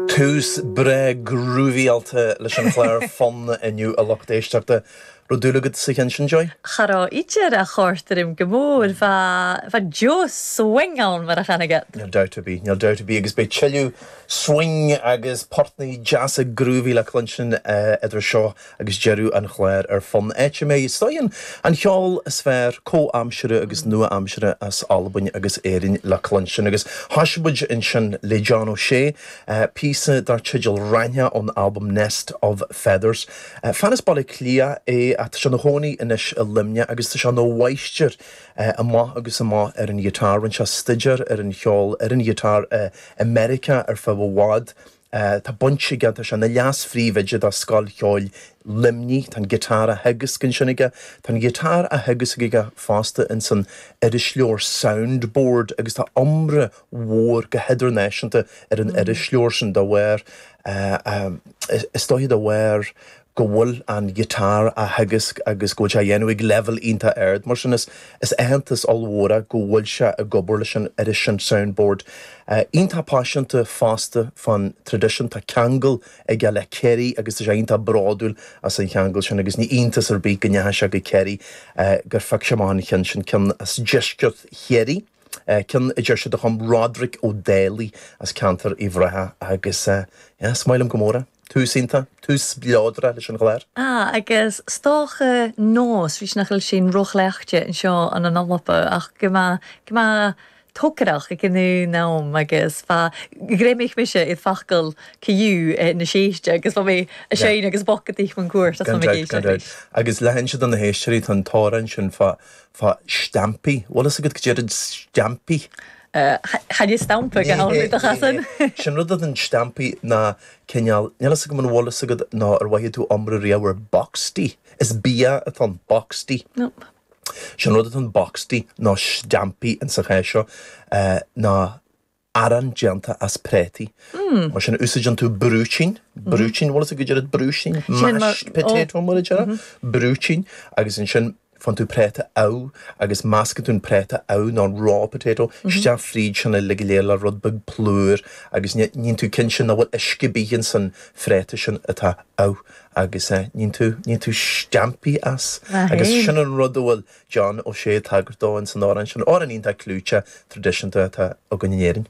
Tús breá grúvaíáilte leis an chlár Fonn inniu a lucht éisteachta. Raibh dúil agat sa cheann sin, Joy? Cha raibh idir chòrd e rium gu mòr, bha deagh swing ann mar a chanadh iad! Níl dabht ar bith, níl dabht ar bith agus beidh tuilleadh swing agus portannaí deasa grúvaí le cluinstin idir seo Agus deireadh an chláir ar Fonn, áit a mbeidh scoth an cheoil is fearr comhaimseartha agus nua-aimseartha as Albain agus Éirinn le cluinstin agus thosaigh muid ansin le John O'Shea, píosa dar teideal Raithneach ón albam Nest of Feathers. Fear as Baile Átha Cliath é ach tá sé ina chónaí anois i Luimneach agus tá sé ina mháistir amach agus amach ar an ghiotár. Rinne sé stuidéar ar an cheol ar an ghiotár i Meiriceá ar feadh i bhfad Tá baint aige, tá sé ina leas-phríomhoide do Scoil Cheoil Luimnigh, tá an giotár á theagasc ansin aige. Tá an giotár á theagasc aige fosta insan irisleabhar Soundboard agus tá iomrá mhór go hidirnáisiúnta ar an irisleabhar sin de bharr, is dóiche de bharr go bhfuil an guitar á theagasc agus go bhfuil sé á dhéanamh ag leibhéal iontach ard. Mar sin, is aitheantas ollmhór é go bhfuil sé ag obair leis an iris, an Sound Board. Iontach paiseanta fosta fán traidisiún. Tá ceangal aige le Ciarraí agus tá sé iontach bródúil as an cheangal sin agus ní iontas ar bith go ndeachaigh sé go Ciarraí, gur phioc sé amach an ceann sin, ceann as deisceart Chiarraí, ceann a deir siad a chum Roderick O'Daly as ceantar Uíbh Ráthaigh agus, yeah, is maith liom go mór é. Tús iontach, tús spleodrach leis an chlár. Ah, agus 's dòcha nòs a-rithist nach eil sinn ro chleachdte an seo ann an Alba, ach gu math, gu math togarrach aig an aon àm agus fa, ghreimich mise air facail Caillou na sèiste agus bha mi a' Yeah. seinn agus bocadaich mun cuairt as Gan liom ag dabht, éisteacht gan dabht. ris. Agus le hinse do na héisteoirí, tá an t-amhrán sin fá, fá stampaí. Bhfuil fhios agat caidé rud stampaí? Chan eil. Stampadh go hamhlaidh do chasan. Sé an rud é an Steampaí ná cineál, níl fhios agam an bhfuil fhios agat ná ar mhothaigh tú iomrá riamh ar boxty? Is bia atá ann, boxty. Nope. Sé an rud atá ann, boxty, nó steampaí in sa chás seo, ná arán déanta as préataí. Mm. Mar sin úsáideann tú brúitín, brúitín, an bhfuil fhios agat caidé rud brúitín? Sin mar, oh. Mashed potato mar a déarfá. Brúitín agus ansin faigheann tú préata amh agus measgann tú an préata amh nó an raw potato isteach fríd sin uilig go léir le rud beag plúr agus níonn tú cinnte nach bhfuil uisge ar bith ins an phréata sin atá amh agus níonn tú níonn tú steaimpí as agus sin an rud a bhfuil John Ó Sé ag tagairt dó ins an amhrán sin, amhrán iontach clúiteach traidisiúnta atá againn in Éirinn.